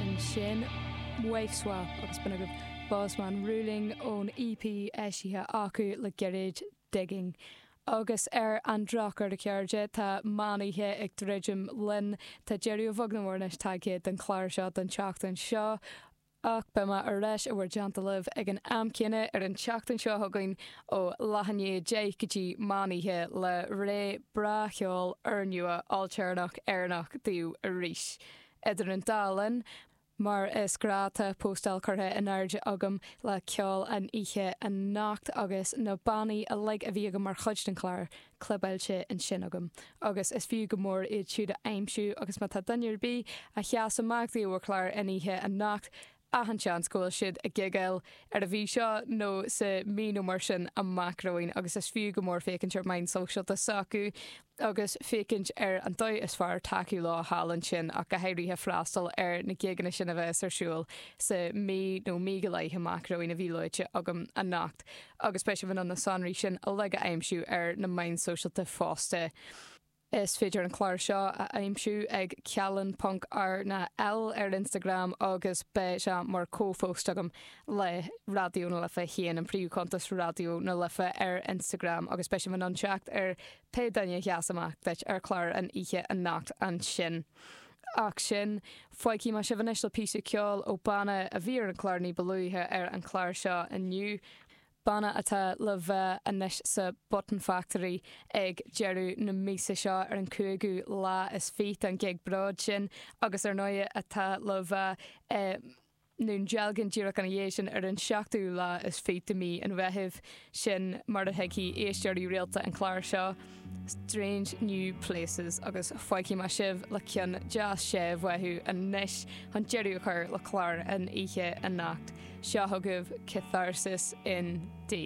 ansin Wife Swap agus b'in agaibh Bossman Ruling ón EP eisithe acu le gairid, Digging. Agus ar an drochuair, a chairde, tá meánoíche ag druidim linn, tá deireadh a bheag nó a mhór anois tagtha don chlár seo don tseachtain seo, ach beidh mé ar ais i bhur dteannta libh ag an am céanna ar an tseachtain seo chugainn ó leath i ndiaidh a deich go dtí meánoíche le rogha breá cheoil úrnua ailtéarnach Éireannach daoibh arís. Idir an dá linn, mar is gnách tá postáil curtha in airde agam le ceol an oíche anocht agus na bannaí uilig a bhí agam mar chuid den chlár clibeáilte ansin agam agus is fiú go mór iad siúd a aimsiú agus má tá duine ar bith a sheas amach daoibh ar chlár an oíche anocht Achan seans go bhfuil siad ag gigeáil ar an mhí seo nó sa mí nó mar sin amach romhainn agus is fiú go mór féachaint ar meáin sóisialta s'acu agus féachaint ar an dóigh is fearr tacú leo thall ansin ach go háirithe freastal ar na gigeanna sin a bheas ar siúl sa mí nó mí go leith amach romhainn a bhí luaite agam anocht agus beidh sibh in ann na sonraí sin uilig a aimsiú ar na meáin shóisialta fosta. Is féidir an clár seo a aimsiú ag Ceallan ponc R na L ar Instagram agus beidh sé mar comhphost agam le Raidió na Life féin, an príomhchuntas Raidió na Life ar Instagram agus beidh sibh in ann teacht ar pé duine a sheas amach duit ar chlár an oíche anocht ansin. Ach sin, fágfaidh mé sibh anois le píosa ceoil ó banna a bhí ar an chlár ní ba luaithe ar an chlár seo inniu. banna atá le bheith anois sa Button Factory ag deireadh na míosa seo ar an cúigiú lá is fiche don ghig bróid sin agus ar ndóigh atá le bheith i nDún Dealgan díreach ina dhiaidh sin ar an tseachtú lá is fiche de mhí an Mheithimh, sin mar a thuigfidh éisteoirí rialta an chláir seo. Strange New Places agus fágfaidh mé sibh le ceann deas séimh uathu anois chun deireadh a chur le clár an oíche anocht. Seo chugaibh Catharsis in D.